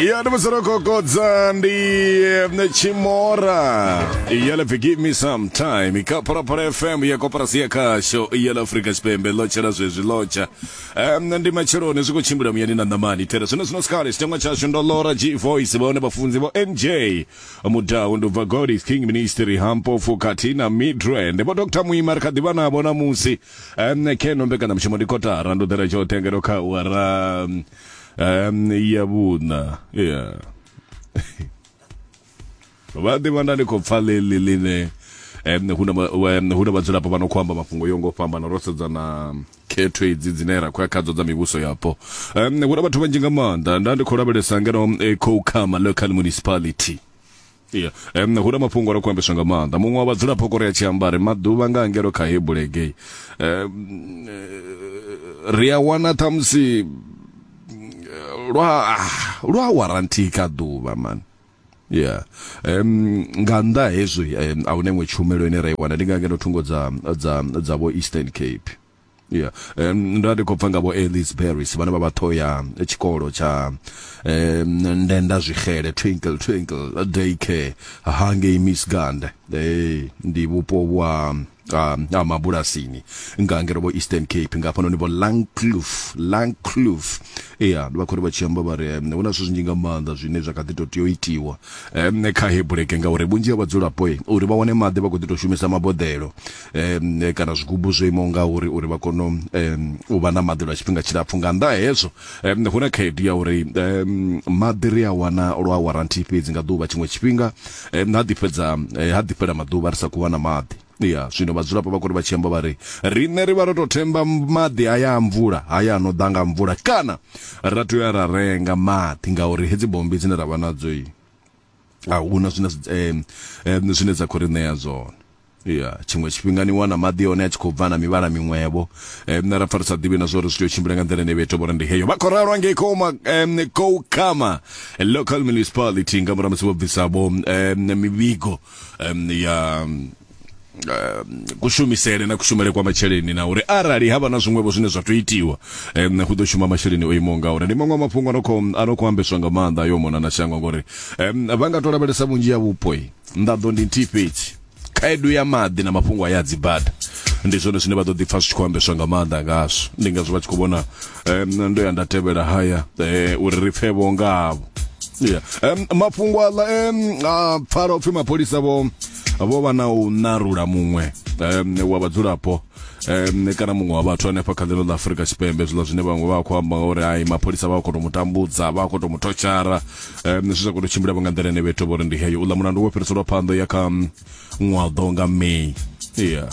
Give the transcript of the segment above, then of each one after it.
ya ndi musoro kokodza ndi eh, chimora ya lapfi give me some time ka phalaphala fm ya koporasi ya khasho ya la afrika tshipembe lotsha la zwezwi lotsha um, ndi matsheloni zwi khou tshimbila muyani na ṋamani thera zwino zwino sikale tshitengwa tshashu ndo lora g voice vhaone vhafunzi vho nj mudau ndi ubva godis king ministry hampofu khathihi na midrand vho dr muima ri kha ḓivha navho namusi um keno mbekanyamushumo ndi kotara ndo ḓela tshoṱhe ngeno kha wara um, um, ya vhuṋa yeah vha ḓivha nda ndi khou pfa ḽeḽi ḽine um, hu na ma- wa- um, hu na vhadzulapo vha no khou amba mafhungo yo ngo fhambana ro sedza na khetho idzi dzine ra khou ya khadzo dza mivhuso yapo um, hu na vhathu vhanzhi nga maanḓa nda ndi khou lavhelesa ngeno um, eh, khoukhama local municipality Yeah. Um, hu na mafhungo ro kuambeswa nga maanḓa muṅwe wa vhadzulapo kore a tshi amba ri maḓuvha nga ngelo kha hebulegei um, ri a wana ṱhamusi lwa lwa warranty kha ḓuvha man yeah um nga nnḓa hezwi um, a hune iṅwe tshumelo ine ra i wana ndi nga ngeno thungo dza dza dza vho eastern cape yeah um, ndo ndi khou pfa nga vho alice barris vhane vha vha ṱho ya tshikolo tsha um, ndenda zwixele twinkle twinkle day care hangei misgand hey, ndi vhupo vwa um, a mabulasini nga ngere vho eastern cape nga hafhanoni vho langcloof langcloof ya vha khori vha tshi amba vha ri um, hu na zwithu zwinzhi nga maanḓa zwine zwa kha ḓi to tea u itiwa um, kha hebuleke ngauri vhunzhi ha vhadzulapo uri vha wane maḓi vha khou ḓi to shumisa maboḓelo um, kana zwigubu zwo imaho nga uri uri vha kone um, u vha na maḓi lwa tshifhinga tshilapfhu nga nnḓa hezwo um, hu na khaedu ya uri um, maḓi ri a wana lwa waranthi fhedzi nga ḓuvha tshiṅwe tshifhinga um, ha ḓifhedza eh, ha ḓifhela maḓuvha ri sa khou wana maḓi ya zwino vhadzulapo vha kori vha tshi amba vha ri riṋe ri vha ro tou themba maḓi haya a mvula haya ano ḓa nga mvula kana ra tea ra renga maḓi ngauri hedzi bommbi dzine ra vha nadzo a huna zwine zwine dza khou ri ṋea zwone ya tshiṅwe tshifhinga ni wana maḓi one a tshi khou bva na mivhala miṅwevho um nṋe ra pfa ri sa ḓivhi na zwa uri zwi tea u tshimbila nga nḓila ine vhetho vhori ndi heyo vha khou ralwa ngei koma um koukama local municipality nga murahu musi vho bvisa vho um mivhigo um ya eh, kushumisele na kushumele kwa masheleni na uri arali havha na zwiṅwevho zwine zwa to itiwa um hu ḓo shuma masheleni o imaho nga uri ndi maṅwe mafhungo ano kho ano kho ambeswa nga maanḓa yo mona na shango ngori um vha nga to lavhelesa vhunzhi ya vhupo nḓaḓo ndi nthihi fhedzi khaedu ya maḓi na mafhungo a ya dzibada ndi zwone zwine vha ḓo ḓi pfa zwi tshi khou ambeswa nga maanḓa ngazwo ndi ngazwo vha tshi khou vhona um ndo ya nda tevhela haya um uri ri pfe vho ngavho yeah. um, mafhungo aḽa um, a pfala upfhi mapholisa vho vho vha na u narula muṅwe um, wa vhadzulapo um, kana muṅwe wa vhathu hanefha kha ḽino ḽa afurika tshipembe zwiḽa zwine vhaṅwe vha khou amba ngauri ai mapholisa vha khou tou mu tambudza vha khou tou mu thotshara um, zwi sa khou tou tshimbila vha nga nḓila ine vhethu vho ri ndi heyo uḽa mulandu wo fhiriselwa phanḓa ya kha um, ṅwaḓo nga may yeah.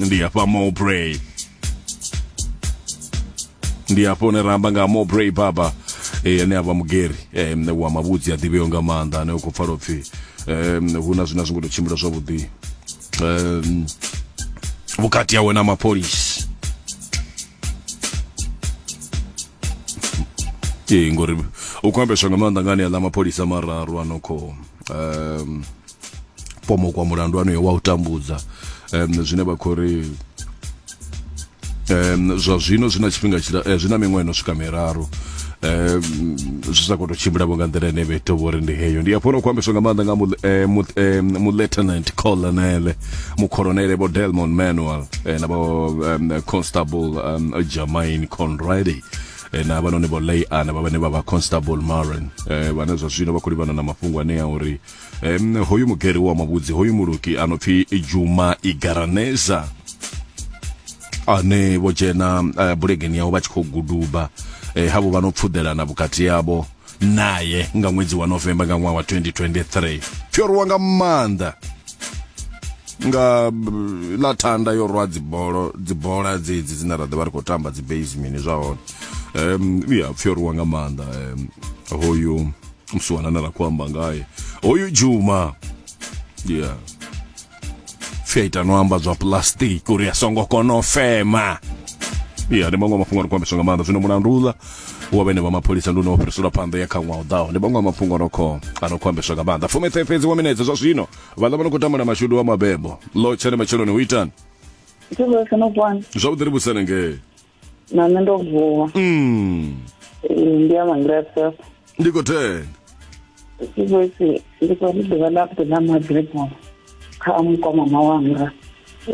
ndi hafha mowbray ndi hafho hune ra amba nga mobray baba eh, ane a vha mugeri eh, mne wa mavhudzi a ḓivheo nga maanḓa ane u khou pfala upfhi eh, mne hu na zwine a zwi ngo tou tshimbila zwavhuḓi eh, vhukati hawe na mapholisi ee ngori u khou ambeswa nga maanḓa ngani aḽa mapholisa mararu a no khou um, pomokwa mulandu anoyo wa u tambudza um, zwine vha khou ri um, zwa zwino zwi na tshifhinga eh, zwi na miṅwaha no swika miraru um, zwi sa khou to tshimbilavo nga nḓila ine vheto vho ri ndi heyo ndi afho no khou ambeswa nga maanḓa nga mulieutenant eh, eh, colonel mucolonele vho delmon manuel eh, na vho um, constable um, germain conrady Eh, na vhanoni vho lay ana vha vhane vha vha constable maren eh, vhane zwa zwino vha khou livhana na mafhungo anea uri um, hoyu mugeri wa mavhudzi hoyu muluki a no pfi juma igaraneza ane vho dzhena uh, bulegeni yaho vha tshi khou guduba eh, havho vha no pfuḓelana vhukati yavho naye nga ṅwedzi wa novemba nga ṅwaha wa 2023 fhyorwa nga maanḓa nga mm, ḽa thanda yo rwa dzibolo dzibola dzedzi dzine ra ḓo vha ri khou tamba dzi basemini zwa hone um ya pfhyorwa nga maanḓa um, hoyu mswanana la kwamba ngaye oyu juma yeah fyaita nwamba zwa plastic uri asongo kono fema iya ndi maṅwe a mafhungo a rikwambe songa maanḓa zwino mulandula wa vhene vha mapholisa ndi une wa fhiriselwa phanḓa ya kha ṅwaha u ḓaho ndi maṅwe a mafhungo anokho anokhwambeswa nga maanḓa fumethe fhedzi wa minetse zwa zwino vhaḽa vha no khou tambula mashudu wa mabebo lo tshene matsheloni hu itani Zwi vhuya fhano bwana. zwavhuḓi ri vhusenengee na nṋe ndo vuwa mm. ndi ya mangrese ndi khou thena ikwesi ndi khou ri ḓuvha ḽa vhuḓi ḽa magrebo kha mukomama wanga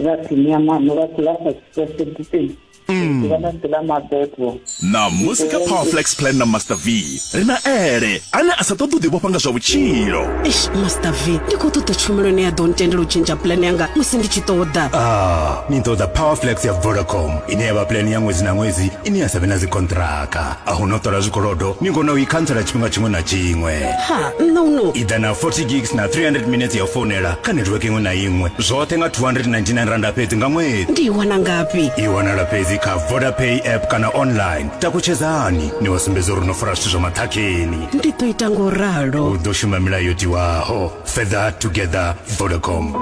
vha ḓini ya mano vha dzula sa tsipesiditin ḓuvha ḽa vhuḓi ḽa mabebo na musika power flex plan na master v ri na ele ane a sa ṱoḓi u ḓivhofha nga zwa vhutshilo eish master v ndi khou ṱoḓa tshumelo ine ya ḓo ntendela u tshentsha pulani yanga musi ndi tshi ṱoḓa ah ni ṱoḓa powerflex ya vodacom ine ya vha pulani ya ṅwedzi na ṅwedzi ine ya sa vhe na dzikontraka a hu no ṱola zwikolodo ni kona u i khantsela tshifhinga tshiṅwe na tshiṅwe ha nṋe uno i ḓa na 40 gigs na 300 minutes ya u founela kha netiweke iṅwe na iṅwe zwoṱhe nga 299 randa fhedzi nga ṅwedzi ndi i wana ngafhi i wanala fhedzi kha vodapay app kana online takutshedzani ni wa sumbedza uri no fara zwithu zwa maṱhakheni ndi ḓo ita ngo ralo u ḓo shuma milayo yo tiwaho fether together vodacom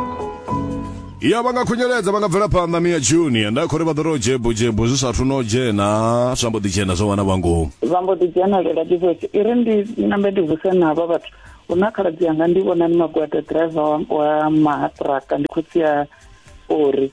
ya vha nga khunyeledza vha nga bvela phanḓa mia junior nda khori vha ḓo ro jebo jebo zwi sathu no dzhena zwa mbo ḓi dzhena zwa wana vhangomu vha mbo ḓi dzhenelela divoice i ri ndi nambe ndi vuse navho vhathu hu na khaladzi yanga ndi vhonani magwada driver wa mahatraka ndi khotsi ya ori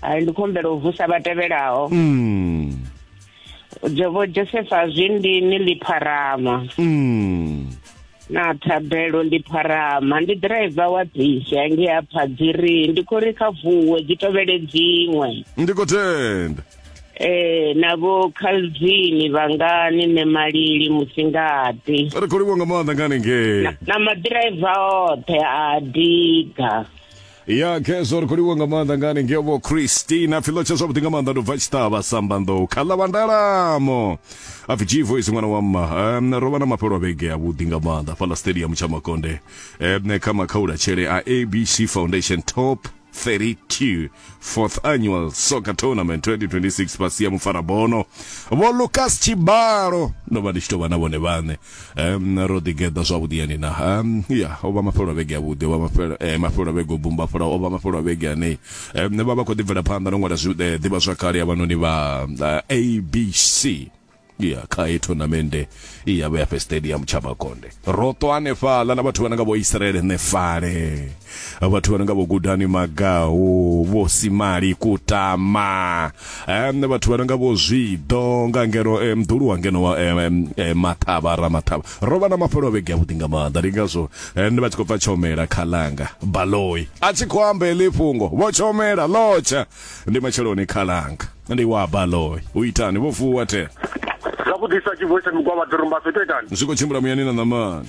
hai ndi khombela u vusa vha tevhelaho mm. jobo josefa zwindini lipharama mm. na thabelo lipharama ndi driver wa bisi ange ya phadziri ndi khou ri kha vuwe dzi tovhele dziṅwe ndi khou tenda eh na vho Calvin vhangani ne malili musingati ri khou livhuwa nga maanḓa ngani ngei na madriver oṱhe a diga ya khezwo ri khou livhuwa nga maanḓa ngani ngevho christina pfilo tsha zwavhuḓi nga maanḓa ndo bva tshiṱavha sambanḓou kha ḽa vandalamo apfi g voice ṅwana wa mma um, ro vha na mafhelo a vhege avhuḓi nga maanḓa fhaḽa stadium tsha makonde um, kha makhaula tshele a abc foundation top 32 fourth annual soccer tournament 2026 fhasi ya mufarabono vho lucas tshibalo ndo vha ndi tshi tou vha na vhone vhaṋe um ro ḓi geḓa zwavhuḓi yani na um ya o vha mafhelo vhege ya vhuḓi o vha mafhelo eh, mafhelo vhege bumba fula o vha mafhelo vhege yani um ne vha vha khou ḓi bvela phanḓa no ṅwala eh, ḓivha zwa kale ya vhanoni vha eh, abc ya kha i tournament ya vha ya fe stadium tsha makonde ro to anefhala na vhathu vha nga vho Israel nefale vhathu vha no nga vho gudani magahu vho simali kutama um, vhathu vha no nga vho zwiḓo nga ngeno um, mdulu wa ngeno wa um, um, maṱhavha ra maṱhavha ro vha na mafhelo a vhege avhuḓi nga maanḓa ndi ngazwo um, ndi vha tshi khou pfa tshomela khalanga baloi a tshi khou amba heḽi fhungo vho tshomela lotsha ndi matsheloni khalanga ndi wa baloi u itani vho vuwa the zwa kudisa tshivuwe tsha migwavha ḓorumbaso ito itani zwi khou tshimbila muyani na ṋamani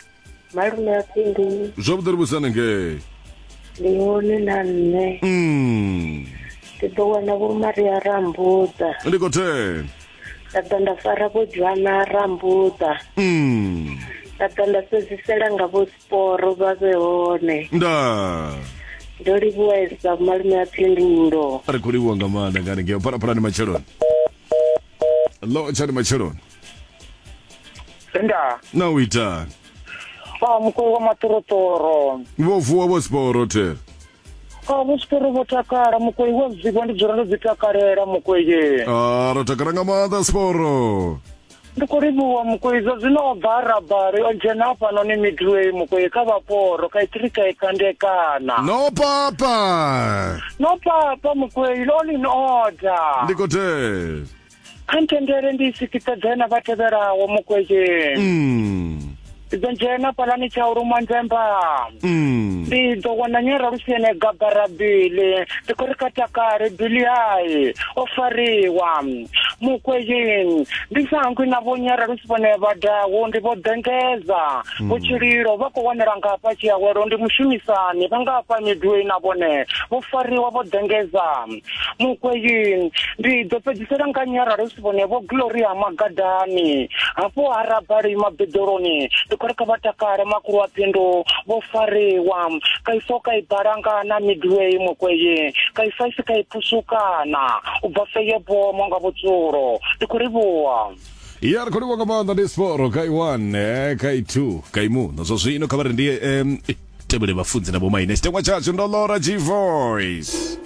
malume a phindu zwavhuḓi ri vhusane ngei ndi hone na nṋe Mm. ndi ḓo wana vho maria rambuḓa ndi khou thena nda ḓa nda fara vho dzhwana rambuḓa Mm. nda ḓa nda sedzisela nga vho sporo vha vhe hone nda ndo livhuwesa malume a phindulo ri khou livhuwa nga maanḓa ngani ngeo phalaphalani matsheloni lo tshani matsheloni Tenda. na u itani Ah, mukulu wa maṱoroṱoro. vho vuwa vho siporo thera Ah, vho siporo vho takala mukoi wa zwiwa ndi dzula ndo dzi takalela mukoye. a ro takala nga maanḓa siporo Ndi khou livhuwa mukoi zwa zwino o bva arabari o dzhena hafhanoni midway mukoi kha vhaporo kha itirika i kandekana. no papa No papa mukoi lolin order. ndi khou thera kha ntendele ndi sikitsa dzena vha tevhelaho mukwezheni Mm. ndi ḓo dzhena palani tsha u luma nzemba Mm. ndi ḓo wana nyera lusene gabara bili ndi khou ri kha takale bili hai o fariwa mukwezheni ndi sa hangwi na vho nyera lusi vhone vhadaho ndi vho ḓengeza vho tshililo vha khou wanela nga hafha tshiawelo ndi mushumisani vha nga hafha midwei na vhone vho fariwa vho ḓengeza mukweyin ndi ḓo fhedzisela nga nyaralo si vhone vho glory ha magadani hafho ha rabali mabeḓoloni ndi khou ri kha vha takale makulu wa phindu vho fariwa kaiso ka i balanga na midway mukweyin kaisa isi ka i phusukana u bva feye bomo nga vhutsulo ndi khou ri vhuwa ya ri khou livha nga maanḓa ndi siporo kha i one eh, kha i two kha i muno zwa zwino kha vha ri ndi um tevhele vhafunzi na vhomaine tshitengwa tshashu ndo lora g voice